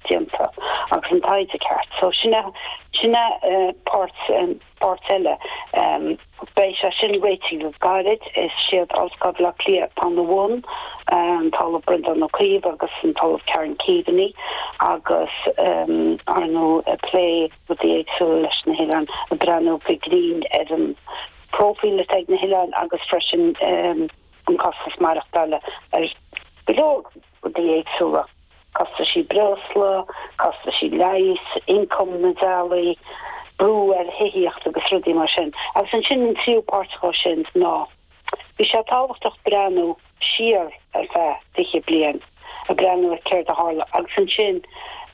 déanta agus an taighde ceart. So sin a, sin a páirt, páirt eile. Beidh sé sin réitigh go gairid. Is iad Ollscoil Bhleá Cliath atá ina bhun, an tOllamh Breandán Ó Caoimh agus an tOllamh Karen Keaveney agus arnó ag plé rudaí éagsúla leis na hoileáin, ag breathnú go grinn ar an bpróifíl atá ag na hoileáin agus freisin an costas maireachtála ar go leor. rudaí éagsúla, costaisí breosla, costaisí leighis, ioncam na dteaghlach, brú ar thithíocht agus rudaí mar sin. Agus ansin an tríú páirt dhó sin ná, bhí sé tábhachtach breathnú siar ar feadh fiche bliain, ag breathnú ar céard a tharla agus ansin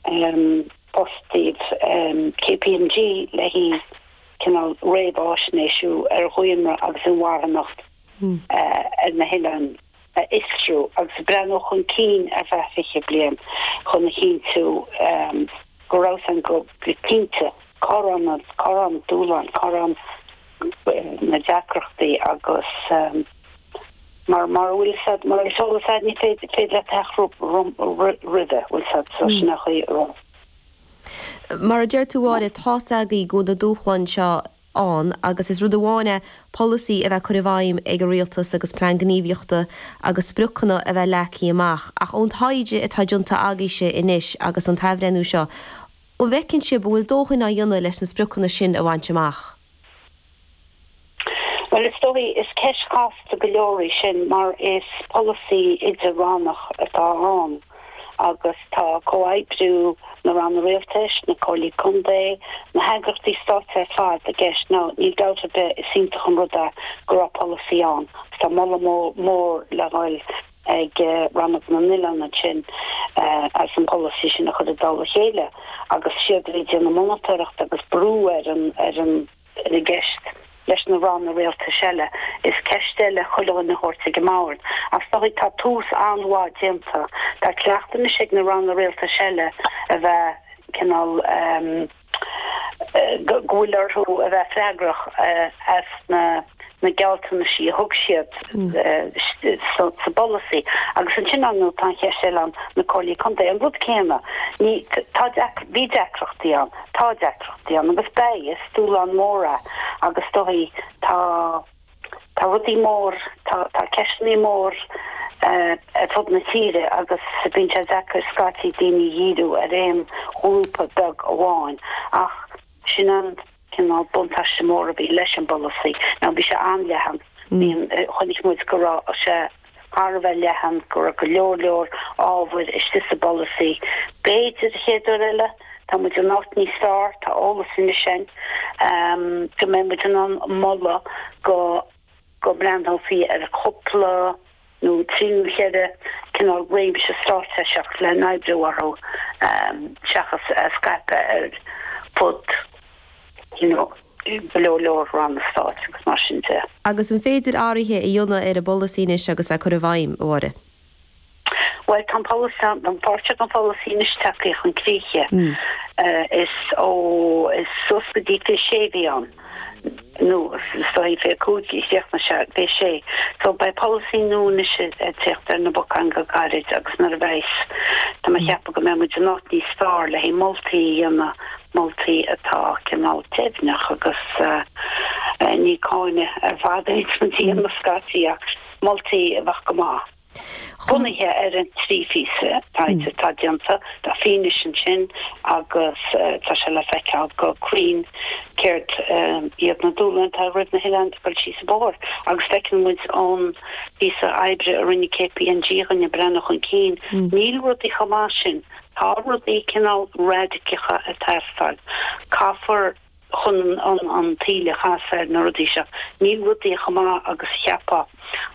ehm, fostaíodh ehm, KPMG le haghaidh cineál réamhfháisnéisiú ar dhaonra agus inmharthanacht eh ar na hoileáin. a fhiosrú agus breathnú chun cinn ar feadh 20 bliain chun a chinntiú go raibh a fhios againn go cinnte, cá raibh na cá raibh na dúshláin, cá raibh na deacrachtaí agus mar mara bhfuil a fhios agat mar is eolas agat ní féidir féidir leat athrú roimhe bhfuil a fhios agat so sin an chaoi. Mar a deir tú Áine, tá a fhios agaibh go bhfuil na dúshláin seo, ann, agus is rud amháin é polasaí a bheith curtha i bhfeidhm ag an rialtas agus plean gníomhaíochta agus spriocanna a bheith leagtha amach, ach ón taighde atá déanta agaíbhse anois agus ón athbhreithniú seo, an bhfeiceann sibh go bhfuil dóthain á dhéanamh leis na spriocanna sin a bhaint amach? Bhuel, is dóigh, is ceist chasta go leor í sin mar is polasaí idir-rannach atá ann. agus tá comhoibriú na ranna Rialtais, na Comhairlí Contae, na heagraíochtaí stáit ar fad i gceist. Now níl dabht ar bith, is iontach an rud é go raibh polasaí ann, agus tá moladh mór le dhul ag Rannóg na nOileán ansin as an bpolasaí sin a chur i dtoll a chéile agus is iad a bhí ag déanamh monatóireachta agus brú ar an ar an gceist leis na ranna rialtais eile, is ceist eile chuile dhuine a thabhairt ag an mbord. Ach is dóigh tá tús an-mhaith déanta. Tá cleachtadh anois ag na ranna rialtais eile a bheith cineál eh go bhfuil orthu a bheith freagrach as na. na gealltanaisí a thug siad sa bpolasaí agus ansin ar ndóigh tá an cheist eile ann, na Comhairlí Contae, an rud céanna. Ní, tá, bhí deacrachtaí ann, tá deacrachtaí ann agus beidh, is dúshlán mór é agus is dóigh tá, tá rudaí mór, tá, tá ceisteannaí mór ar fud na tíre agus bíonn sé deacair scaití daoine a dhíriú ar aon ghrúpa beag amháin ach sin an, cineál buntáiste mór a bhí leis an bpolasaí ná bhí sé an-leathan. Chonaic muid go raibh sé thar a bheith leathan, go raibh go leor leor ábhair istigh sa bpolasaí. B'fhéidir, an chéad uair eile, tá muid in áit níos fearr, tá eolas anois againn go mbeidh muid in ann moladh go. go mbreathnófaí ar chúpla nó trí nó cheithre cineál réimse straitéiseach le n-oibriú orthu seachas a scaipeadh ar fud go leor leor ranna stáit agus mar sin de. Agus an féidir athruithe a dhéanamh ar an bpolasaí anois agus é curtha i bhfeidhm, a Mháire. Bhuel, tá an polasaí, nó páirt den pholasaí anois teagtha chun críche. Is ó, is suas go dtí fiche sé a bhí ann, nó is dóigh fiche cúig seachas fiche sé. So, beidh polasaí nua anois ag teacht ar na bacáin go gairid agus nuair a bheas, tá mé ag ceapadh go mbeidh muid in áit níos fearr le haghaidh moltaí a dhéanamh, moltaí atá cineál deimhneach agus ní cáineadh ar fad a bheas i gceist, ach. moltaí a bheadh go maith. Bunaithe ar an trí phíosa taighde atá déanta, tá fianaise ansin agus tá sé le feiceáil go cruinn céard iad na dúshláin atá roimh na hoileáin ag dul síos an bóthar agus feiceann muid ón bpíosa oibre a rinne KPMG a rinne breathnú chun cinn, níl rudaí chomh maith sin, tá rudaí cineál raidiceacha ag teastáil. Caithfear. chun an taoille a chasadh ar na rudaí seo. Níl rudaí chomh maith agus a cheapfá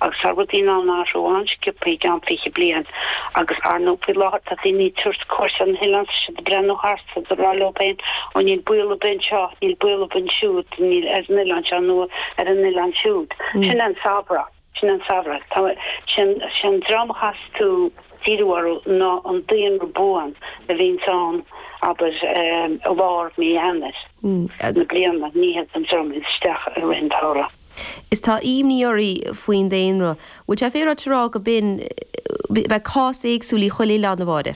agus tá rudaí in ann athrú an-scioptha i gceann fiche bliain agus, ar ndóigh, faoi láthair tá daoine ag tabhairt cuairt ar na hoileáin is tá siad ag breathnú thart is tá siad ag rá leo féin, ó níl baol ar bith anseo, níl baol ar bith ansiúd, níl ar an oileán seo nó ar an oileán siúd. Sin an samhradh. Sin an samhradh. Tá. Sin. Sé an dream a chaithfeas tú díriú orthu ná an daonra buan a bhíonns ann, abair, i lár mí Eanáir na bliana, ní hiad an dream a théanns isteach i rith an tsamhraidh. Is tá ímní oraibh faoin daonra. Bhuel, sé, faoi mar a bhí tú ag rá go binn, beidh cás éagsúil í chuile oileán, a Mháire.